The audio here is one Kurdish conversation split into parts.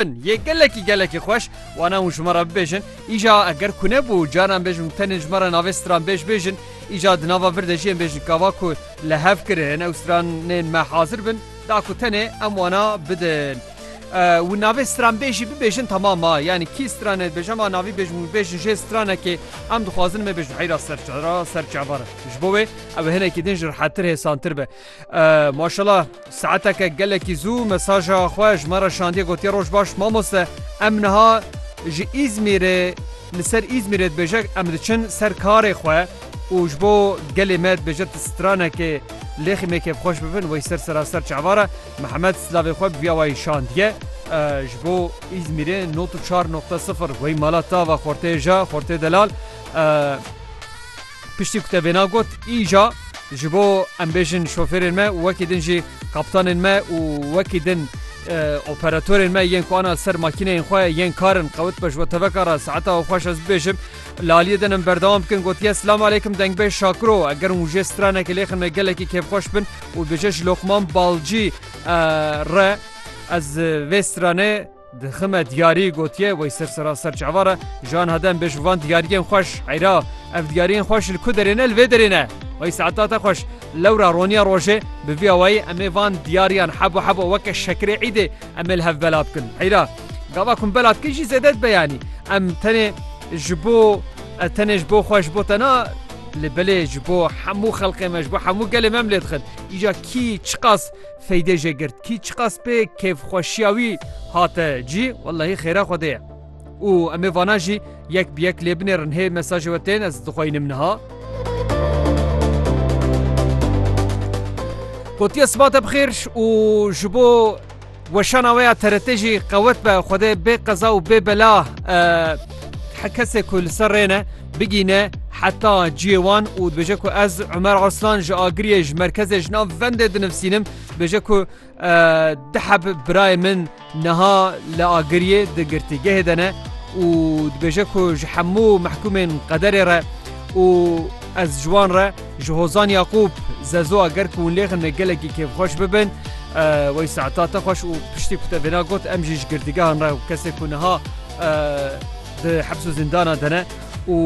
Bin yê gelekî gelekî xweş wana hûn ji me re bibêjin. Îja eger ku nebû caran bêjin û tenê ji me re navê stran bêj bêjin. Îja di nava vir de jiyên bêjin kava ku li hev kirin ew stranên me hazir bin da ku tenê em wana bidin. Û navê stranbêjî bibêjin temam ma yanî kî stranê dibêje ma navî bêjin û bêjin jê stranekê em dixwazin me bêjin heyra serçera serçebar ji bo wê ew hinekî din ji rihettir hêsantir be. Maşallah saeteke gelekî zû mesaja xwe ji me re şandiye gotiye roj baş mamoste em niha ji Îzmîrê li ser Îzmîrê dibêje em diçin ser karê xwe û ji bo gelê me dibêje tu stranekê lêxî me kêfxweş bibin wey ser seraser çavara Mihemed silavê xwe bi vî awayî şandiye ji bo Îzmîrê not û çar noqte sifir wey mala tava xortê ja xortê delal Piştî ku te vêna got, îja ji bo em bêjin şofêrên me û wekî din jî kaptanên me û wekî din operatorên me yên ku ana ser makîneyên xwe yên karin qewit be ji bo teveka re saeta û xweş ez bibêjim laliyê din em berdewam bikin gotiye silam aleykum dengbêj şakiro eger hûn jê stranekê lêxin me gelekî kêfxweş bin û bêje ji loqman balcî re ez vê stranê Dixime diyarî gotiye wey ser sera ser çavan re ji aniha dem be ji van diyariyên xweş eyra ev diyariyên xweş li ku derê ne li vê derê ne wey saeta te xweş lewra roniya rojê bi vî awayî em ê van diyariyan hebo hebo weke şekirê îdê em ê li hev bela bikin eyra gava ku em bela dikin jî zêde dibe yanî em tenê ji bo ez tenê ji bo xwe ji bo te na lê belê ji bo hemû xelqê me ji bo hemû gelê me em lê dixin îca kî çiqas Seydê jê girt kî çiqas pê kêfxweşiya wî hate cî wellahî xêra Xwedê ye. Û em ê vanan jî yek bi yek lê binêrin hê mesajê we tên ez dixweynim niha. Gotiye sibate bi xêr û ji bo weşana we ya TRT jî qewet be Xwedê bê qeza û bê bela Her kesê ku li ser rê ne, bigîne heta ciyê wan û dibêje ku ez Umer Arslan ji Agiriyê ji merkezê ji nav vendê dinivsînim, dibêje ku di heb birayê min niha li Agiriyê di girtîgehê de ne û dibêje ku ji hemû mehkûmên qederê re û ez ji wan re ji Hozan Yaqûb zezo eger ku hûn lêxin me gelekî kêfxweş bibin wey saeta te xweş û piştî ku te vêna got em jî ji girtîgehan re û kesê ku niha Di heps û zîndana de ne û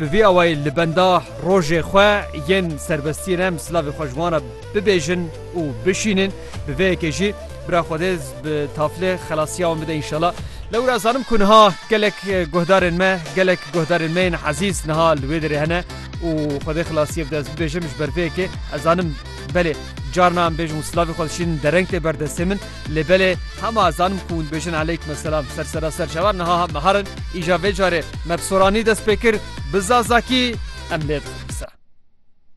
bi vî awayî li benda rojê xwe yên serbestî re em silavê xwe ji wan re bibêjin û bişînin. Bi vê yekê jî bira Xwedê bi taflê xelasiya wan bide înşela. Lewra ez zanim ku niha gelek guhdarên me, gelek guhdarên me yên ezîz niha li wê derê hene û Xwedê xilasiyê bide ez bibêjim ji ber vê yekê ez zanim belê carna em bêjim û silavê xwe dişînin dereng tê ber destê min. Lê belê hema zanim ku hûn dibêjin Eleykme selam ser sera ser cawan niha me herin, îja vê carê me bi soranî dest pê kir, bi zazakî em lê dixin qise.